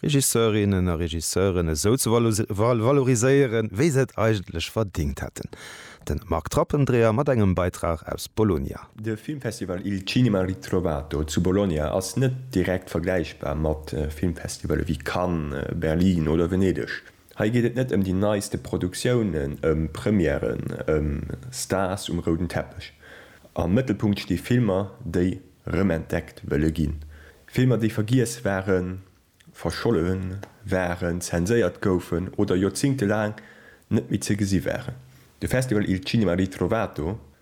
Regisseurinnen a Regisseuren esou ze valoriséieren, wéi se et eigentlech verdingt hätten. De Marc Trappendreher mat engem Beitrag aus Bologna. De Filmfestival Il Cinema Ritrovato zu Bologna ass net direkt vergläichbar mat Filmfestivale wéi Cannes, Berlin oder Venedeg. Hei geet et net ëm déi neiste Produktiounen, ëm Premièren, ëm Stars um rouden Teppech. Am Mëttelpunkt sti Filmer, déi rëmentdeckt wëlle ginn. Filmer, déi vergiess waren, verscholle waren, zenséiert goufen oder joerzéngtelaang net méi ze gesi waren. De Festival Il Cinema Ritrovato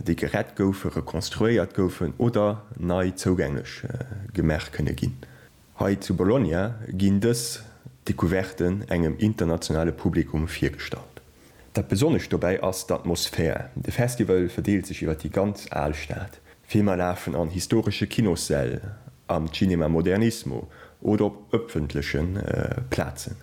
déi gerett goufen, rekonstruéiert goufen oder nei zougänglech gemaach kënne ginn. Hei zu Bologna ginn dës Decouverten engem internationale Publikum virgestallt. Dat Besonnescht dobäi ass d'Atmosphär, de Festival verdeelt sech iwwer déi ganz al Stad, Filmer lafen an historesche Kinossäll, am Cinema Modernismo oder op ëffentleche Plazen.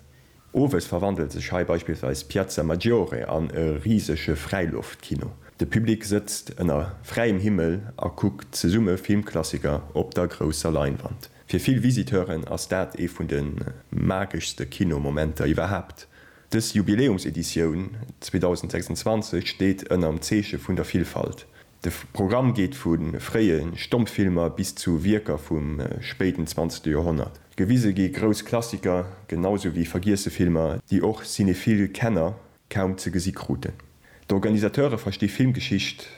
Owes verwandelt sech hei beispillsweis d'Piazza Maggiore an e risege Fräiloftkino. De Public sëtzt ënner fräiem Himmel a kuckt zesumme Filmklassiker op der grousser Leinwand. Fir vill Visiteuren ass dat ee vun de mageschste Kinomomenter iwwerhaapt. Dës Jubiläumseditioun 2026 steet ënnerm Zeeche vun der Villfalt. De Programm geet vu fréie Stommfilmer bis zu Wierker vum spéiden 20. Joerhonnert. Gewise gi grouss Klassiker, genau sou wéi vergiesse Filmer, déi och cinephile Kenner kaum ze gesi kruten. D'Organisateure versti Filmgeschicht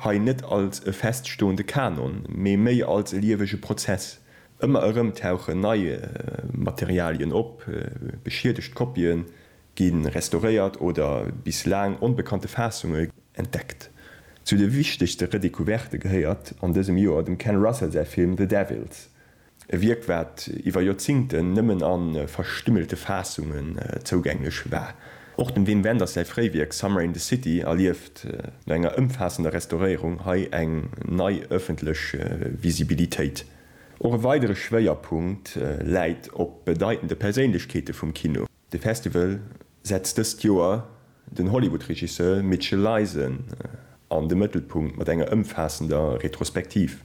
hei net als e feststoende Kanon, mee méi als e liewege Prozess. Ëmmer erëm tauchen nei Materialien op, beschiedegt Kopien, gi restauréiert oder bis laang onbekannte Faassunge entdeckt. Zu de wichtegste Redecouverte gehéiert an dësem Joer dem Ken Russell säi Film The Devils, e Wierk wat iwwer Joerzingten nëmmen a verstümmelte Faassunge zougänglech war. Och dem Wim Wenders säi Fréiwierk Summer in the City erlieft no enger ëmfaassender Restauréierung hei eng nei ëffentlech Visibilitéit. Och e weidere Schwéierpunkt läit op bedeitende Perséinlechkeete vum Kino. De Festival setzt dëst Joer den Hollywood-Regisseur Mitchell Leisen an de Mëttelpunkt mat enger ëmfaassender Retrospektiv.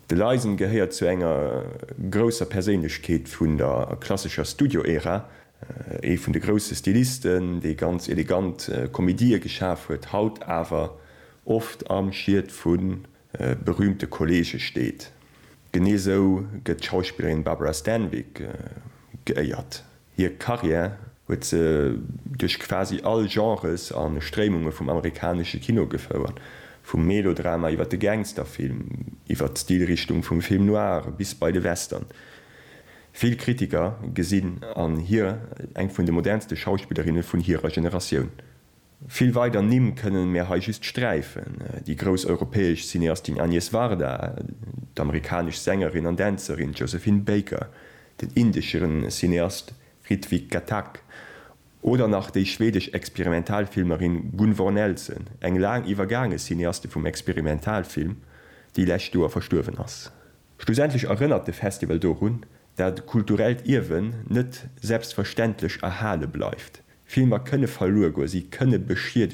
De Leisen gehéiert zu enger grousser Perséinlechkeet vun der klassescher Studio-Ära, ee vun de grousse Stilisten, dee ganz elegant Komedië geschaf huet, haut awer oft am Schiet vu berüümte Kolleege steet. Genee esou gëtt d'Schauspillerin Barbara Stanwyck geéiert. Hir Karriär huet se duerch quasi all Genres a Stréimunge vum amerikanesche Kino gefouert, vum Melodrama iwwer de Gangsterfilm, iwwer d'Stilrichtung vum Film noir bis bei de Western. Vill Kritiker gesinn an hir eng vun de modernste Schauspillerinne vun hirer Generatioun. Vill weider Nimm kënnen mär hei just sträifen, déi grouss europäesch Cineastin Agnes Varda, d'amerikanesch Sängerin an Dänzerin Josephine Baker, den indesche Cineast Ritwik Ghatak oder nach déi schwedesch Experimentalfilmerin Gunvor Nelson, eng laang iwwergaange Cineaste vum Experimentalfilm, déi lescht Joer verstuerwen ass. Schlussendlech erënnert de Festival dorun, dat kulturellt Ierwen net selbstverständlech erhale bleift. Filmer kënne verluer goe, si kënne beschiedeget